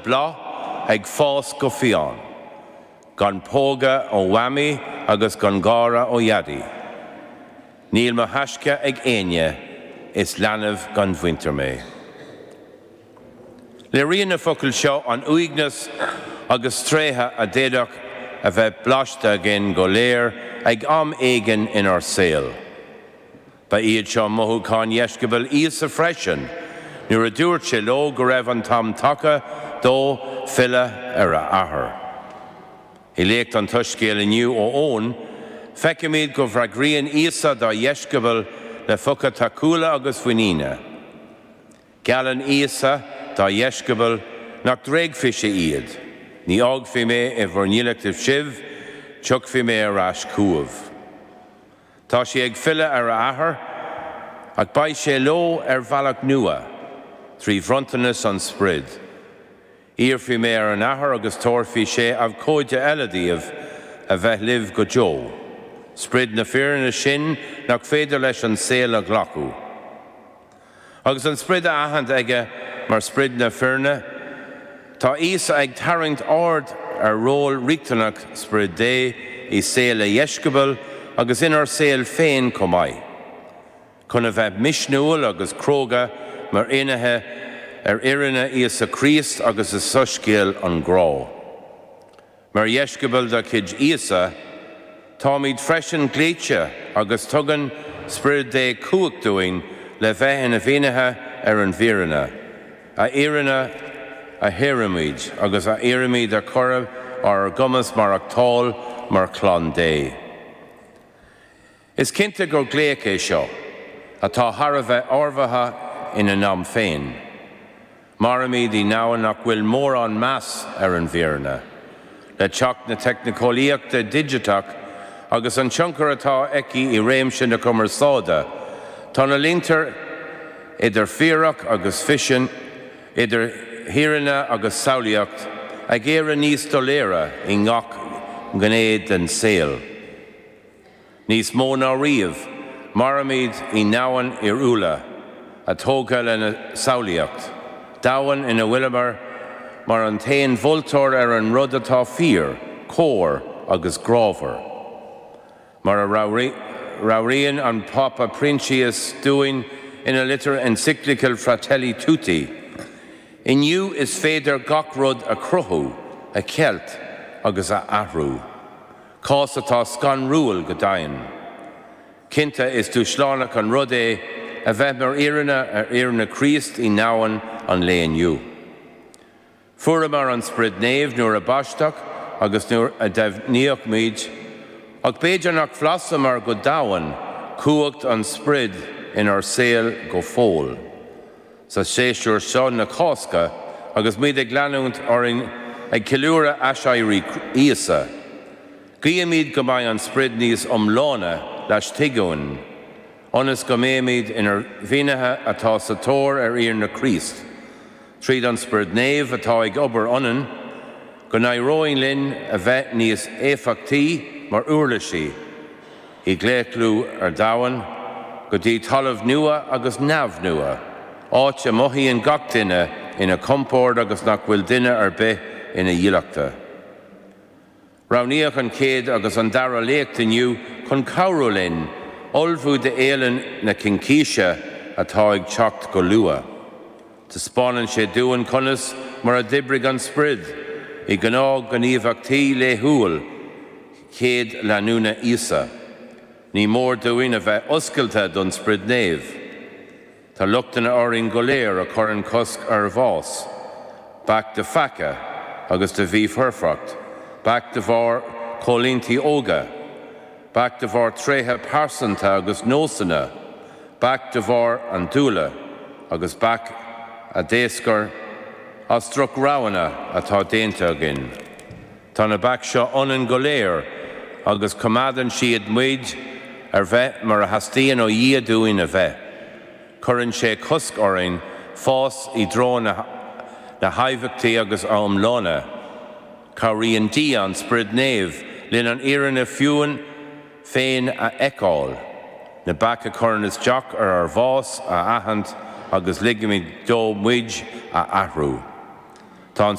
Bláth ag fás go fiáin. Gan póga ó Mhamaí agus gan gáire ó Dhaidí. Níl mo thaisce ag éinne, is leanbh gan mhuintir mé. Léiríonn na focail seo an uaigneas agus tréigthe a d'fhéadfadh a bheith blaiste againn go léir ag am éigin inár saol. Ba iad seo mothúcháin dheisceabail Íosa freisin nuair a dúirt sé leo go raibh an t-am tagtha dó filleadh ar a Athair. I léacht an tSoiscéil inniu ó Eoin, feicimid go bhfreagraíonn Íosa dá dheisceabail le focail tacúla agus mhuiníne. Geallann Íosa dá dheisceabail nach dtréigfeadh sé iad, Ní fhágfaidh mé i bhur ndílleachtaibh sibh, tiocfaidh mé ar ais chugaibh. Tá sé ag filleadh ar a athair, ach beidh sé leo ar bhealach nua, trí bhronntanas an Sprid. Iarrfaidh mé ar an Athair agus tabharfaidh sé abhcóide eile daoibh, a bheith libh go deo, Sprid na fírinne sin nach féidir leis an saol a ghlacadh. Agus an sprid a aithint aige mar sprid na fírinne, tá Íosa ag tarraingt aird ar ról riachtanach Sprid Dé i saol a dheisceabail agus inár saol féin chomh maith. Chun a bheith misniúil agus cróga mar fhinnéithe ar fhírinne Íosa Críost agus i soiscéal an ghrá. Mar dheisceabail de chuid Íosa, táimid freisin glaoite agus tugann Sprid Dé cumhacht dúinn le bheith ina bhfinnéithe ar an bhfírinne, a fhírinne a shaoraímid agus a iarraimid a chur ar ár gcumas maireachtáil mar chlann Dé. Is cinnte gur glaoch é seo atá thar a bheith ábhartha inár n-am féin. Mairimid i ndomhan nach bhfuil mórán meas ar an bhfírinne. Le teacht na teicneolaíochta digiteach agus an tionchar atá aici i réimse na cumarsáide, tá na línte idir fíoras agus ficsean, idir fhírinne agus samhlaíocht ag éirí níos doiléire i ngach gné den saol. Níos mó ná riamh, mairimid i ndomhan fhíorúla, atá tógtha lena samhlaíocht, domhan ina bhfuileamar mar an t-aon mholtóir ar an rud atá fíor, cóir agus grámhar. Mar a mheabhraíonn an Pápa Proinsias dúinn ina litir encyclical Fratelli Tutti, Inniu is féidir gach rud a chruthú, a cheilt agus a athrú. cás atá scanrúil go deimhin. Cinnte, is dúshlánach an rud é a bheith mar fhírinne ar fhírinne Chríost i ndomhan an lae inniu. Fuaireamar an Sprid Naomh nuair a baisteadh agus nuair a deimhníodh muid, ach b'fhéidir nach bhlasamar go domhain cumhacht an Sprid inár saol go fóill. Sa séasúr seo na Cásca, agus muid ag leanúint orainn ag ceiliúradh aiséirí Íosa, guímid go mbeidh an Sprid níos iomláine laistigh uainn, ionas go mbeimid inár bhfianaithe atá sa tóir ar Fhírinne Chríost, tríd an Sprid Naomh atá ag obair ionainn, go n-éireoidh linn a bheith níos éifeachtaí mar uirlisí. I gclaochlú ar domhan, go dtí talamh nua agus neamh nua, áit a mothaíonn gach duine ina chompord agus nach bhfuil duine ar bith ina dhílleachta. Roghnaíodh an chéad agus an dara léacht inniu chun cabhrú linn ullmhú do Fhéile na Cincíse atá ag teacht go luath. Taispeánann sé dúinn conas mar a d'oibrigh an Sprid i gnáthghníomhaíochtaí laethúil, chéad leanúna Íosa, ní mór dúinn a bheith oscailte don Sprid Naomh. Tá lochtanna orainn go léir a chuireann cosc ar ár bhfás, bac de pheaca agus de mhífhoirfeacht, bac de bharr coimhlintí óige, bac de bharr tréithe pearsanta agus nósanna, bac de bharr andúile agus bac a d'éascair as droch-roghanna atá déanta againn. Tá na baic seo ionainn go léir agus coimeádann siad muid ar bheith mar a theastaíonn ó Dhia dúinn a bheith. Cuireann sé cosc orainn fás i dtreo na haibíochta agus iomláine. Cabhraíonn Dia, an Sprid Naomh, linn an fhírinne fúinn féin a fheiceáil, na baic a chuireann isteach ar ár bhfás a aithint agus ligimid dó muid a athrú. Tá an.